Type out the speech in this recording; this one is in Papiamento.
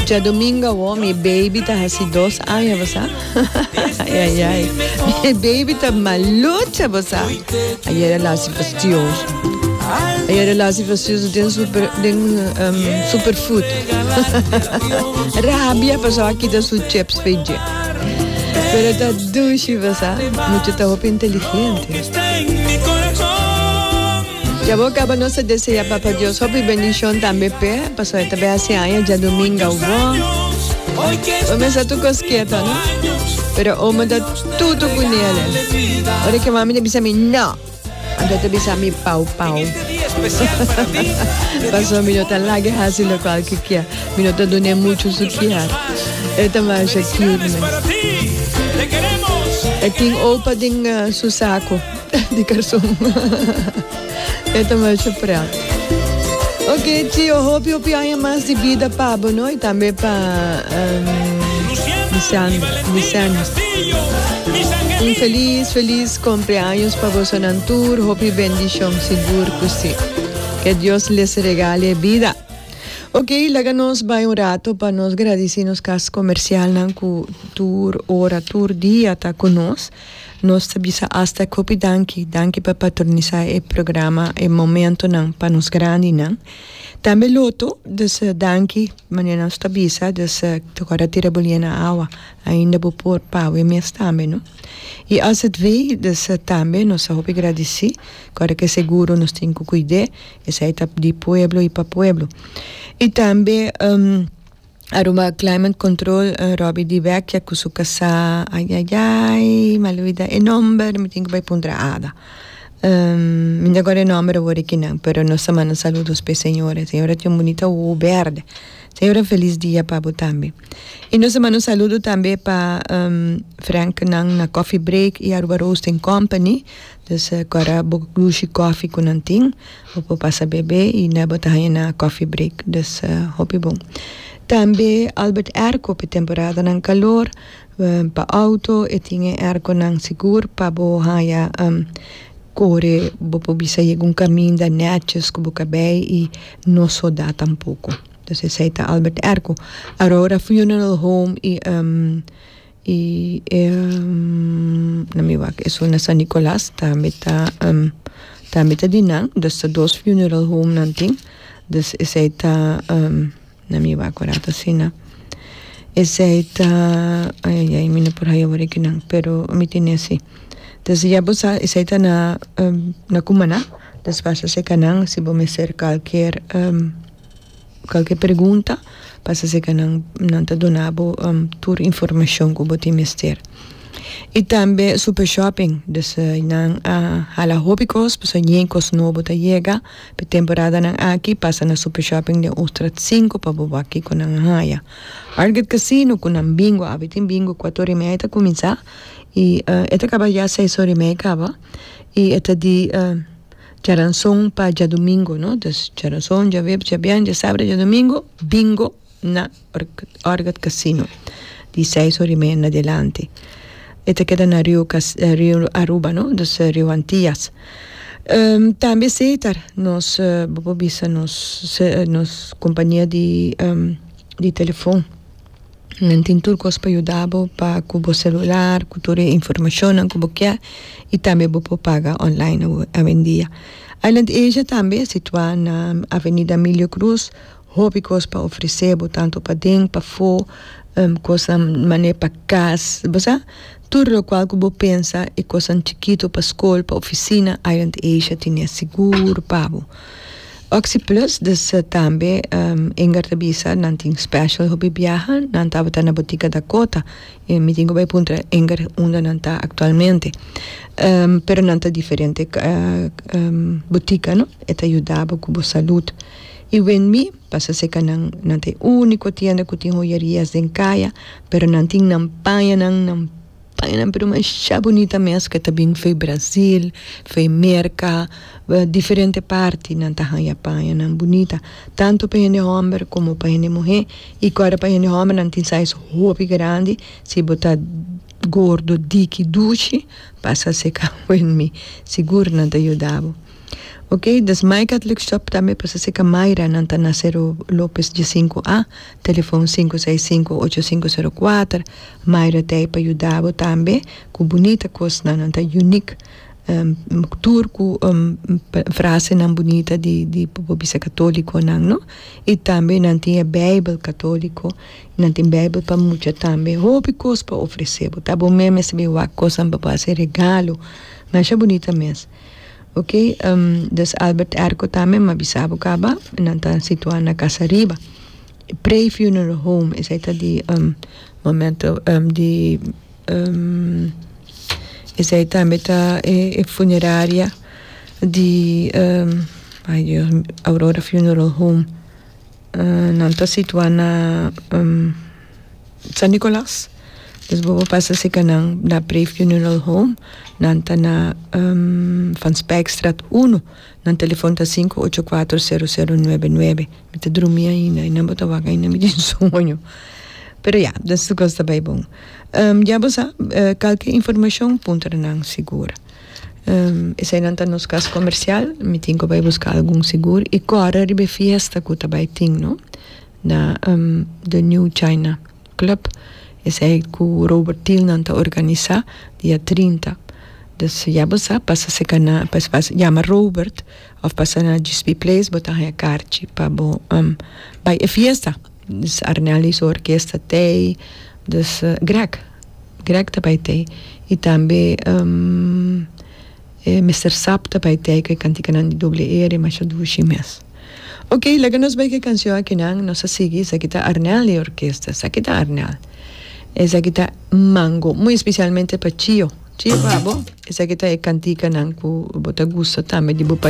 Djadominga awor mi baby ta hasi dos aña bo sa ay ay ay mi baby ta malucha bo sa aye relashi fastioso aye relashi fastioso den super den um super food rabia paso a kita su chips pe dje pero ta dushi bo sa mucha ta hopi inteligente. Ya bo caba nos ta desea Papa Dios hopi bendicion tambe p'e pasobra e ta bai haci aña djadominga ogbó. Bo mester tu cos keto no? Pero omo ta tutu cu Nele. Ora que mami ta bisa mi no, anto ta bisa mi pau pau. Paso mi no ta lage haci lo cual que kia. Mi no ta dune mucho su kiar. E ta masha cute mes. E tin opa den uh, su saco. di karson e ta mashá prat ok tio hopi hopi aña mas di bida pa bo no y tambe pa Lisandro Lisandro un feliz feliz cumpleaños pa bosonan tur hopi bendicion sigur cu si que Dios les regale bida ok laga nos bay un rato pa nos gradici nos cas comercial nan cu tur ora tur dia ta cu nos. Nos ta bisa hasta kopi danki, danki pa patronisá e programa, e momentonan pa nos grandinan. Tambe loto dus danki, manera nos ta bisa, dus tokor a tira bo lie na awa ainda bo por pa awe mes tambe, no? I azv dus tambe nos ta hopi gradisí ora ke seguro nos tin ku kuid'é, esei ta di pueblo i pa pueblo. I tambe. Aruba Climate Control Robbie di Vecchia cu su casá ayayay mal olvida e nomber mi tin cu bay puntra ada mi no ta guarda e nomber awor aki nan pero nos ta manda saludos p'e señora e señora tin un bunita wowo berde señora un feliz dia pa bo tambe y nos ta manda un saludo tambe pa Frank nan na Coffee Break y Aruba Roasting Company Pues agora bo lushi coffee cu nan tin bo por pasa bebe y na bo ta haña na coffee break pues hopi bon. Tambe Albert Airco pe temporadanan calor pa auto e tin e airconan sigur pa bo haña core bo por bisa yega un caminda neches cu bo cabey y no suda tampoco. Pues esey ta Albert Airco. Aurora Funeral Home y y e na mi wak esun na San Nicolas tambe ta tambe ta di nan dos ta dos funeral home nan tin dus esey ta na mi wak ora ta asina esey ta ayayay mi no por haya awor aki nan pero mi tene asi dus ya bo sa esey ta na na cumana despues ta seka nan si bo mester kalkier Kalke pregunta pasa si ka nan nan ta dona bo tur informashon ku bo tin mester. I tambe Super Shopping dus nan a hala hopi kos pasobra ñei kos nobo ta yega pa e temporadanan aki pasa na Super Shopping den Uchtrat sinku pa bo wak kiko nan a haya. Arget Casino ku nan bingo awe tin bingo kuat ora i media ta kuminsá i e ta kaba ya seis ora i media kaba i e ta di Djaranson pa djadumingo no dus djaranson djaweb djabian djasabra djadumingo bingo na orgat casino di seis ora y media na dilanti e ta keda na rio cas rio aruba no dus rio antias tambe setar nos bo por bisa nos se nos compania di di telefon. Nan tin tur kos pa yuda bo pa ku bo selular ku tur e informashonnan ku bo ke i tambe bo por paga online awendia. Island Asia tambe situá na Avenida Emilio Cruz hopi kos pa ofresé bo tantu paden pafó kosnan manera pa kas bo sa. Tur lokual ku bo pensa e kosnan chikitu pa skol, pa ofisina, Island Asia tine sigur pa bo. Oxyplus dus tambe Inger ta bisa nan tin special hopi biaha, nan tabata na Botica Dakota i mi tin ku bai puntra Inger unda nan ta aktualmente pero nan ta diferente botica no e ta yuda bo ku bo salud i wen mi pasa seka nan nan ta e uniko tienda ku tin hoyerias den kaya. Pero nan tin nan paña nan nan paña nan pero masha bunita mes ke ta bin fei Brasil fei Merca diferente parti nan ta haya paña nan bunita tanto pa hende homber como pa hende muhe y kor pa hende homber nan tin size hopi grandi si bo ta gordo diki dushi pasa seka wen mi sigur nan ta yuda bo. Ok, dus Maikat Lukshop tambe pasa si ka Mayra nan ta na Sero Lopes di sinku A, telefon sinku seis sinku ocho sinku sero kuater, Mayra ta ei pa yuda bo tambe ku bunita kosnan, nan ta unik tur ku frasenan bunita di di por bisa katolikonan no, i tambe nan tin e beibel katoliko, nan tin beibel pa mucha tambe, hopi kos pa ofrese bo, ta bo mes mester bin wak kosnan pa bo hasi regalo, masha bunita mes. Ok des Albert Erco tambe mi a bisa bo caba y nan ta situa na Casa Riba pre funeral home esai ta di momento di esai tambe ta e funeraria di ay Dios Aurora funeral home nan ta situa na San Nicolas, dus bobo pasa si kanan na Brave Funeral Home, nan ta na Van Spijkstraat uno, nan telefon ta sinku ocho kuater sero sero nuebe nuebe, mi ta drumi ainda y nan bo ta wak ainda mi tin sueño, pero ya den su kos ta bai bon, ya bo sa kalke informacion puntra nan sigur, esai nan ta nos kas comercial, mi tin ku bai buska algun sigur y kòrè riba e fiesta ku ta bai tin no. na The New China Club, esei ku Robert Tilnan ta organisa dia trinta. Dus ya bo sa, pasa serka na, pasa yama Robert òf pasa na GSP Place, bo ta haña karchi pa bo bai e fiesta. Dus Arnel i su orkes ta tei, dus Greg, Greg ta bai tei i tambe E mester sap ta bai tei ku e kantikanan di doble e rimasha dushi mes. Ok, laga nos bai ku e kansion akinan, nos a sigui, esaki ta Arnel i e orkesta, esaki ta Arnel. Esaki ta mango, muy especialmente pa Chio. Chio, abo, esaki ta e kantikanan ku bo ta gusta tambe di bo.